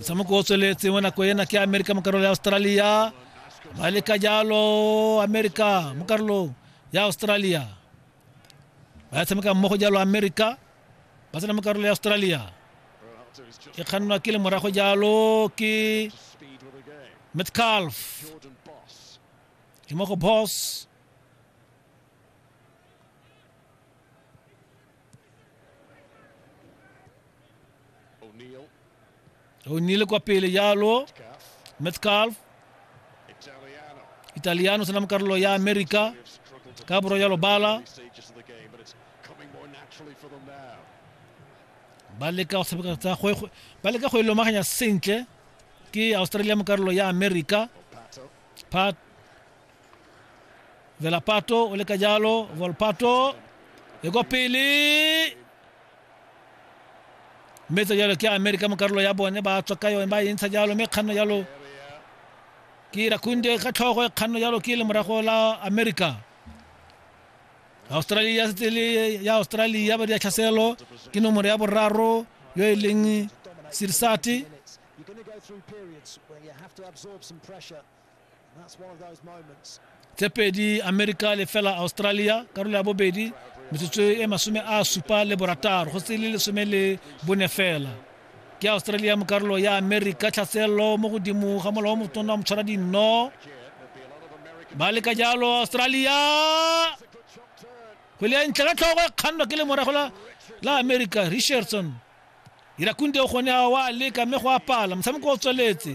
motshameko o tsweletse mo nako ena ke amerika mo karolo ya australia ba leka jalo amerika mo karolong ya australia ba tshameka mmogo jalo amerika ba tsena mo karolo ya australia e kgannwa ke le morago jalo ke metcalf ke mo go boss O'Neill. O'Neill kwa pele yalo. Metcalf. Italiano senam karlo ya America. Kabro yalo bala. ba leka go tshameka tsa go ba leka go ilomaganya sentle ke Australia mo karolo ya America Pat velapato o leka jalo volpato e ko pele mme tsa jalo ke america mo karolo ya bone ba tswa ka yone ba e ntsha jalo mme kganno jalo ke rakunde ka tlhogo e kganno jalo ke le morago la america australia setse le ya australia ba di ya tlhaselo ke nomoro ya boraro yo e leng sirsati tse pedi america le fela australia karolo ya bobedi metsotso e masome a supa le borataro go se le lesome le bone fela ke australia mo karolo ya america tlhaselelo mo godimo ga molao wa motona wa motshwara dinno ba leka jalo australia kgwele ya ntle ka tlhogo e kgannwa ke lemorago la la america richardson irakunde o gone a wa leka mme go apala motshameko o tsweletse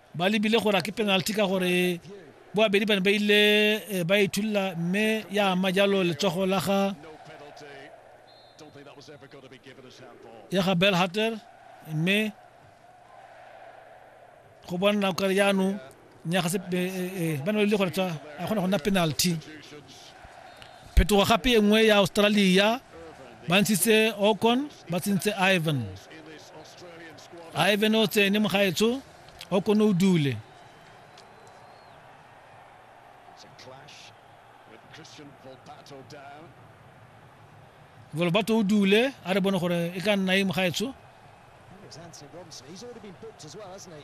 ba lebile gore a ke penalty ka gore boabedi ba ne ba ile eh, ba ithulula mme ya ama jalo letsogo la ga ya ga bell hatter mme go bona kare jaanong nya ga se eh, eh, ba ne ba lebile gore a kgona go nna penalty Phetogo gape e nngwe ya Australia ba ntshitse Okon ba tsentse Ivan. Ivan o tsene mogaetsho Okon o dule. Volbato o dule a re bone gore e ka nna e mogaetsho. He's already been booked as well, hasn't he?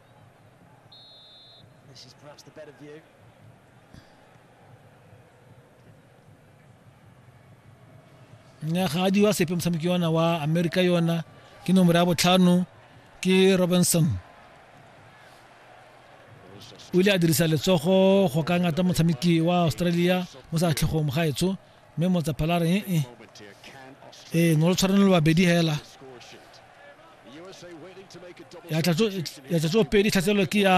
This is perhaps the better view. nyagadi wa sepe motshameki yona wa america yona ke nomoro ya botlhano ke robinson o ile a dirisa letsogo go ka ngata motshameki wa australia mo sa tlhegong gaetsho mme motsaphala re ee ee no lo tshwanelo babedi hela ya tlatso pedi tlhatselelo ke ya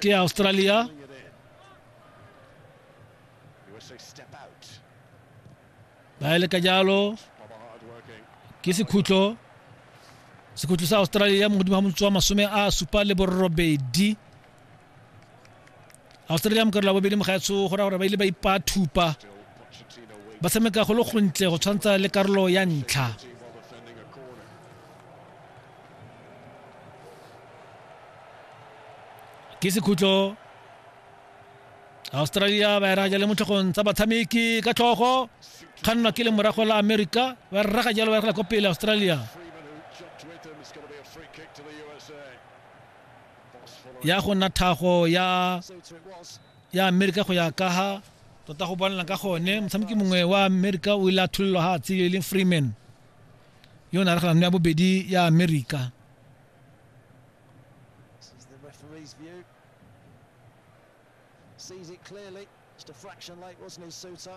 ke ya australia ba ele ka jalo ke sekhutlo sekhutlo sa australia mogodimo ga motswa masome a supa le borobedi australia mo karolo ya bobedi mogaetsho go raya gore ba ile ba ipathupa ba tshameka go le gontle go tshwantsha le karolo ya ntlha ke sekhutlo australia ba eraga jale mo tlhogong tsa batshameki ka tlhogo kgannwa ke le morago la america ba rraga jalo ba ragela ko pele australia ya go nna thago ya ya amerika go ya ka ha tota go bonela ka gone motshameki mongwe wa amerika o ile a tholelwa ga tsile e leng freeman yo o ne a reganano ya bobedi ya amerika sees it clearly. Just a fraction late, wasn't he, Suter?